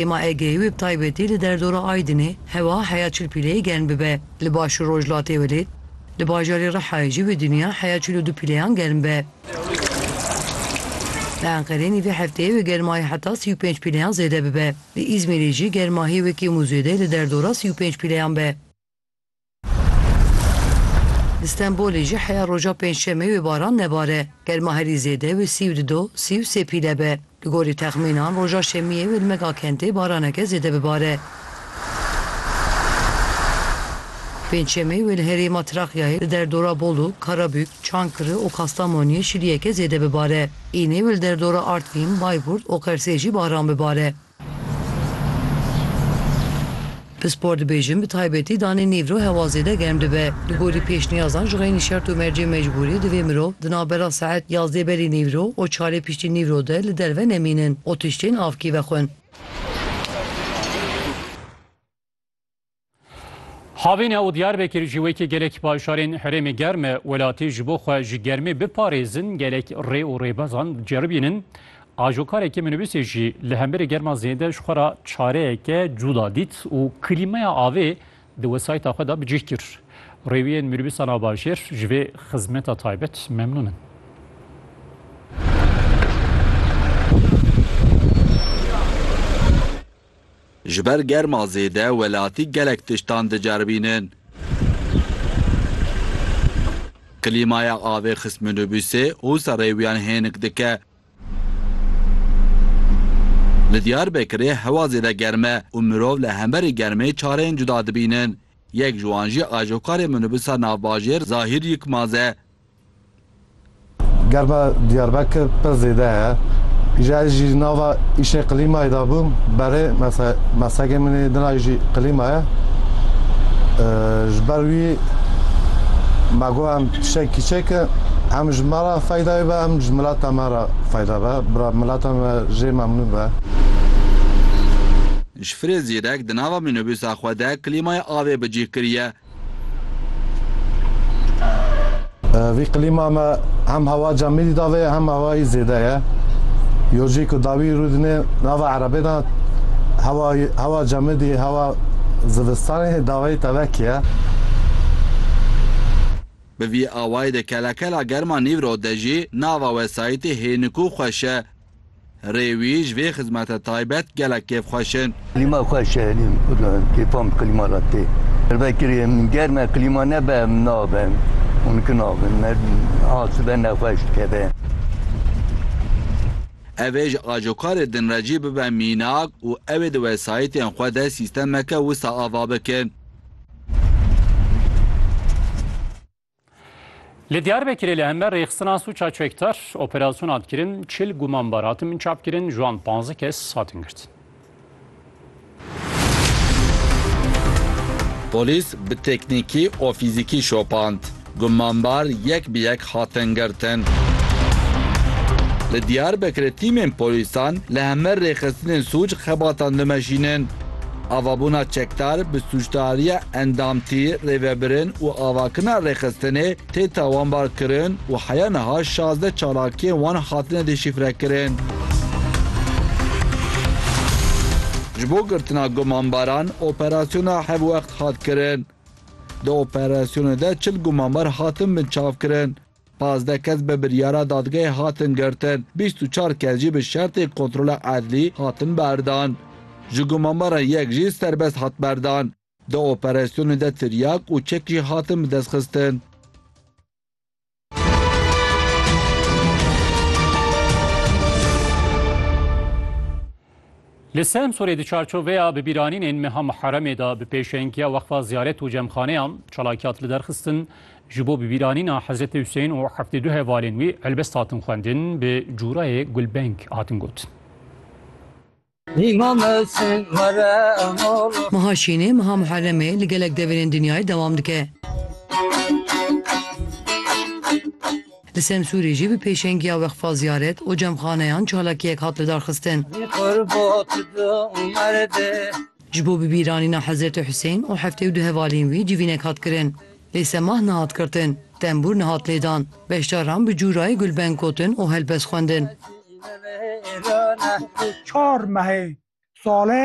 Hema Egeyî wê bi taybetî li derdora Aydinê hewa heya çil pîleyê germ bibe. Li Başûr Rojhilatê welê li bajarê Rihayê jî bi dinya heya çil û du pîleyan germ be. Li Enqerê nîvê hefteyê wê germahî heta sî û pênc pîleyan zêde bibe. Li Îzmîrê jî germahî wê kêm û zêde li derdora sî û pênc pîleyan be. Li Stenbolê jî heya roja Pêncşemê wê baran nebare. Germa herî zêde wê sî û du do, sî û sê pîle be. Li gorî texmînan roja Şemiyê wê li mega kentê baraneke zêde bibare. Pêncşemê wê li herêma Trakyayê li derdora Bolu, Karabük, Çankırı û Kastamoniyê şiliyeke zêde bibare. Înê wê li derdora Artvîn, Bayburt û Qersê jî baran bibare. Pispor dibêjin bi taybetî danê nêvro hewa zêde germ dibe. Li gorî pêşniyazan ji xeynî şert û mercê mecbûrî divê mirov di navbera saet yazdê berî nêvro û çarê piştî nîvro de li derve nemînin û tiştên avkî vexwin. Havîne û Diyarbekir ji wekî gelek paşarên herêmê germ e welatî ji bo xwe ji germê biparêzin gelek rê û rêbazan ceribînin. Ajokarekî minibîsê jî li hemberî germa zêde ji xwe re çareyeke cuda dît û klîmaya avê di wesayîta xwe de bi cih kir. Rêwiyên minibîsa navbajêr ji vê xizmeta taybet memnûn in. Ji ber germa zêde welatî gelek tiştan diceribînin. Klîmaya avê xist minûbûsê û serê wiyan hênik dike. Li Diyarbekirê hewa zêde germ e û mirov li hemberî germê çareyên cuda dibînin. Yek ji wan jî ajokarê minûbûsa navbajêr Zahîr Yikmaz e. Germa Diyarbekir pir zêde ye. Îja ez jî nava îşê qlîmayê de bûm berê mese meslekê min ê din a jî qlîma ye. Ji ber wî me got em tiştek kîçekin hem ji me re feydayê be hem ji milata me re feyda be. Bira milata me jê memnûn be. Ji firê zîrek di nava mînobûsa xwe de klîmayê avê bi cih kiriye. Vî klîma me hem hewaca mîlî dave ye hem hewayî zêde ye. Yojî ku dawî rû dine nava erebê de hewa hewa cemidî hewa zivistanê davayî tevek ye. Bi vî awayî de kela kela germa nîvro de jî nava wesayîtê hênik û xweş e. Rê wî ji vê xizmete taybet gelek kêfxweş in. Klîma xweş e, kêfa min klîma re tê. Vekirî em germ e, klîma nebe em nabin, hûn ki nabin. Me a sibe nexweş dikeve. Ev ê ji ajokarê din re jî bibe mînak û ew ê di wesayîtên xwe de sîstemeke wisa ava bikin. Li Diyarbekirê li hember rêxistina sûça çekdar operasyon hat kirin, çil gumanbar hatin binçav kirin, ji wan panzdeh kes hatin girtin. Polîs bi teknîkî û fîzîkî şopand, gumanbar yek bi yek hatin girtin. Li Diyarbekirê tîmên polîsan li hember rêxistinên sûc xebatan dimeşînin. Avabûna çekdar bi sûcdariya endamtî, rêvebirin û avakirina rêxistinê tê tawanbar kirin û heya niha şazdeh çalakiyên wan hatine dêşîfrekirin. Ji bo girtina gumanbaran operasyona hevwext hat kirin. Di operasyonê de çil gumanbar hatin binçavkirin. Pazdeh kes bi biryara dadgehê hatin girtin, bîst û çar kes jî bi şertê kontrola edlî hatin berdan. Ji gumanbaran yek jî serbest hat berdan. Di operasyonê de tiryak û çek jî hatin bidestxistin. Li Semsûrê di çarçoveya bibîranînên meha Muheremê de bi pêşengiya Weqfa Ziyaret û Cemxaneyan çalakî hat liderxistin. Ji bo bibîranîna Hezretê Husên û heftê du hevalên wî helbest hatin xwendin, bi cûrayê gulbeng hatin gotin. Meha Şînê, meha Muheremê li gelek deverên dinyayê dewam dike. Li Semsûrê jî bi pêşengiya Weqfa Ziyaret û Cemxaneyan çalakiyek hat lidarxistin. Ji bo bibîranîna Hezretê Husên û heftê û du hevalên wî civînek hat kirin. Lê semah nehat girtin, tembûr nehat lêdan. Beşdaran bi cûrayê gulbeng gotin û helbest xwendin. Çar mehê sale